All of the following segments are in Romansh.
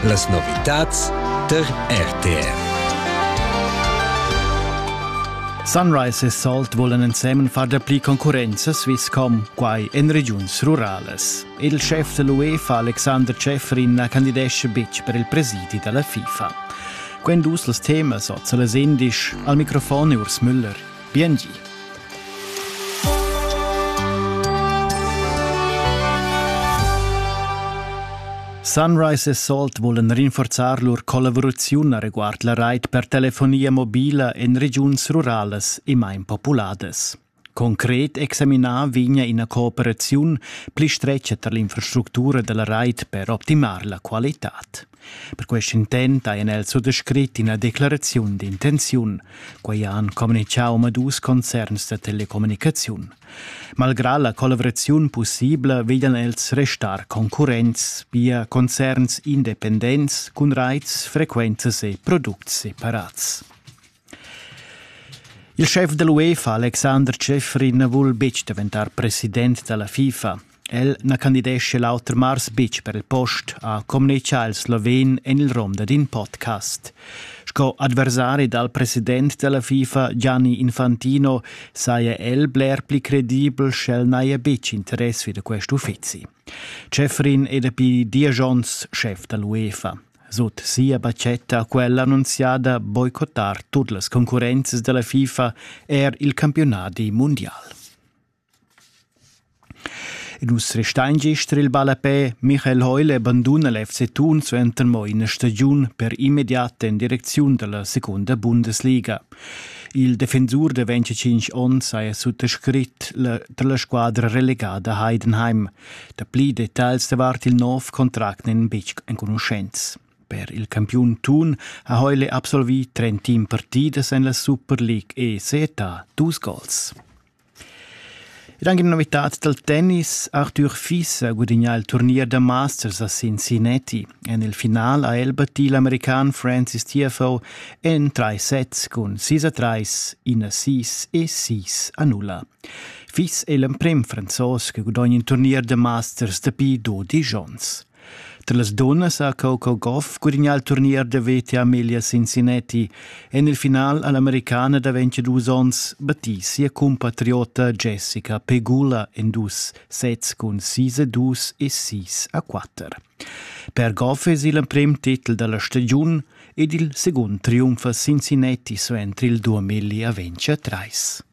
Las novitads tar RTR. Sunrise e Salt volan ensemen far dapli concurrenza Swisscom, quai en regiuns ruralas. Il chef da l'UEFA Alexander Schäfrin na candidesce betg per il presidi da la FIFA. Quend dus las temas oz a las indisch, al microfon Urs Müller. Biengi. Sunrise e Salt vulan rinforzar lur collaboraziun reguard la rait per telefonia mobila en regiuns ruralas e main populadas. Concret examinar vegna ina cooperaziun pli stretga tar l'infrastructura dalla rait per optimar la qualitad. Per quest intent hajan els suttascrit ina declaraziun d'intenziun. Quai han communitgà omadus concerns da telecommunicaziun. Malgrà la collaboraziun pussibla veglian els restar concurrents via concerns independents cun raits, frequenzas e products separats. Il schef da l'UEFA, Alexander Schäfrin, vul betg daventar president da la FIFA. El na candidescha l'auter mars betg per il post, ha communitgà il sloven en il rom dad in podcast. Sco adversari dal president da la FIFA Gianni Infantino saja el bler pli credibel sch'el n'haja betg interess vi da quest uffizi. Schäfrin è dapi diesch onns schef da l'UEFA. Sut sia batgetta ha quella annunziada boicottar tut las concurrenzas dalla FIFA er il campiunadi mundial. E nus restein gist il ballapè. Michael Heule banduna l'FC Thun suenter mo ina stagiun per immediat en direcziun dalla secunda Bundesliga. Il defensur de 25 onns ha suttascrit tra la squadra relegada Heidenheim. Dapli detagls davart il nov contract n'en betg enconuschents. Per il campiun Thun ha Heule absolvì 30 team partidas en la Super League e Seta dus gols. Ed anche una novità dal tennis, Arthur Fissa guadagna il turnier da Masters a Cincinnati. En il final ha el battì l'american Francis Tiafo en trais sets cun 6 a 3, 1 a 6 e 6 a 0. fiss el emprem franzos che gudogn in turnier da masters dapi dodisch onns. Tra las dunnas ha Coco Goff gudignà il turnier da VT Amelia Cincinnati e nel final all'americana da 22 onns battì sia compatriota Jessica Pegula en dus sets cun 6 a 2 e 6 a 4. Per Goff es il emprem titel dalla stagiun ed il secund triumf a Cincinnati suenter il 2023.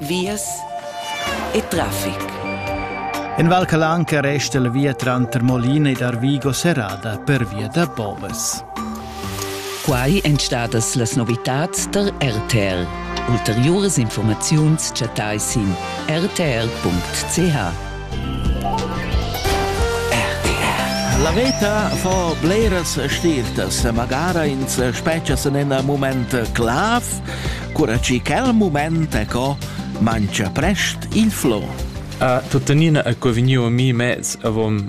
vias e traffic. In Val Calanca resta la via tranter Molina ed Arvigo serrada per via da Boves. Quai èn stadas las novitads tar RTR. Ulteriuras informaziuns chattai sin rtr.ch. La veta fa bleras stirtas, magara ins spetga en in mument clav cura che quel mument è co mangia prest il flor. A tuttenina è co vegniu a mi mez avon